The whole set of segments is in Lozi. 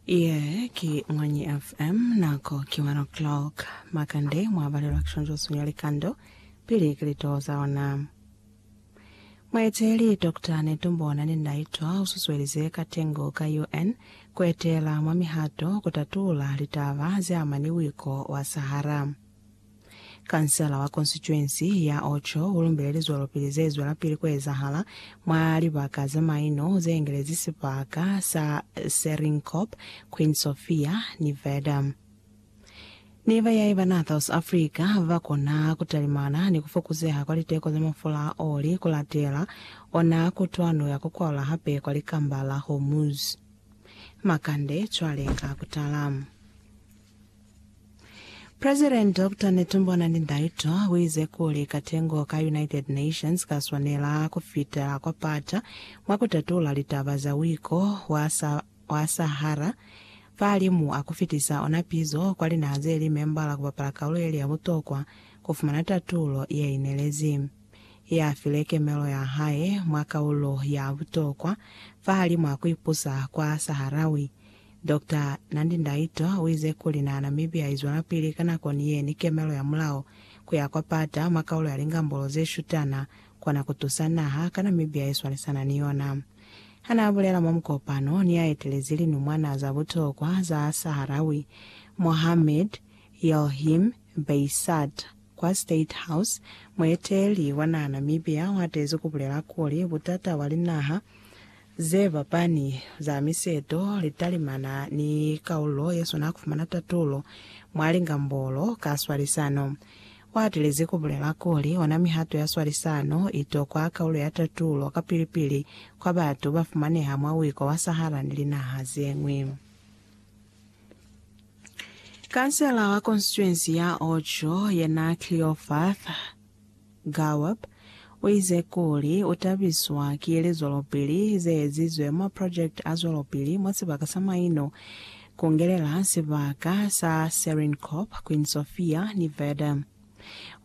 Ye ki Mwanyi FM, nako ki 1 o'clock. Makande mwa balelwa kishonjoswi ya likando pili ki litoho za ona. Mueteeli Doctor Netumbo Nandi-Ndaitwah ususuelize katengo ka UN kuetela mwa mihato kutatuula litaba zeamani wiko wa Sahara. Kansela wa konsituensi ya Ocho u lumbile lizwelopili ze zwelapili ku ezahala mwa libaka ze maino ze engelezi sibaka sa Seringuep, Queen Sofia, ni Verdun. Ni bayaiba naa South Africa ba kona ku talimana ni ku fokuzeha kwa liteko za mafula a oli ku latela ona kutwano ya ku kwaula hape kwa Likamba la Hormuz. Makande cwale ka ku tala. President Doctor Netumbo Nandi-Ndaitwah uize kuli katengo ka United Nations kaswanela kufitela kwa pata mwa kutatula litaba za uiko wa sa wa Sahara fahalimu a kufitisa ona pizo kwa linaha zeli membala kupapala kaulu yeli ya butokwa kufumana tatulo yeinelezi ye afile kemelo ya hae mwa kaulo ya butokwa fahalimu a kuipusa kwa Saharawi Doctor Nandi Ndaitwa uize kuli naha Namibia izwelapili ka nako ni ye ni kemelo ya mulao kuya kwa pata mwa kaulo ya lingambolo ze shutana kona kutusa naha ka Namibia iswalisana ni yona. Hana abulela mwa mukopano ni aetelezi linumwana za butokwa za Saharawi, Mohamed Yelhim Beissat, kwa State House, mueteeli wa naha Namibia uhatezi kubulela kuli butata bwa linaha Ze fapani za miseto, litalimana ni kaulo ye swana ku fumana tatulo mwa lingambolo ka swalisano. U atilezi ku bulela kuli, ona mihato ya swalisano i tokwa kaulo ya tatulo kapili-pili kwa batu ba fumaneha mwa Wiko wa Sahara ni linaha ze ñwi. Kansela wa konstituensi ya Ocho, yena Cleofath. Gaup o ize kuli u tabiswa ki lizwelopili ze ezizwe mwa project a zwelopili mwa sibaka sa maino, ku ngelela sibaka sa Serincorp, Queen Sofia ni Verdun.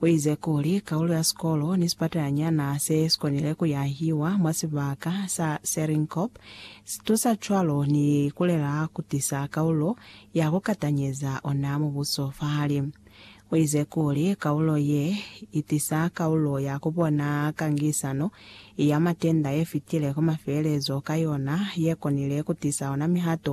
U ize kuli kaulo ya sikolo ni sipatalanyana se si konile ku yahiwa mwa sibaka sa Serincorp si tusa cwalo ni ku lela ku tisa kaulo ya ku katanyeza ona mubuso fahali Uize kuli, Kaulo ye itisa kaulo ya kubona kangisano ya matenda yefitile ku mafelelezo ka yona, yekonile kutisa ona mihato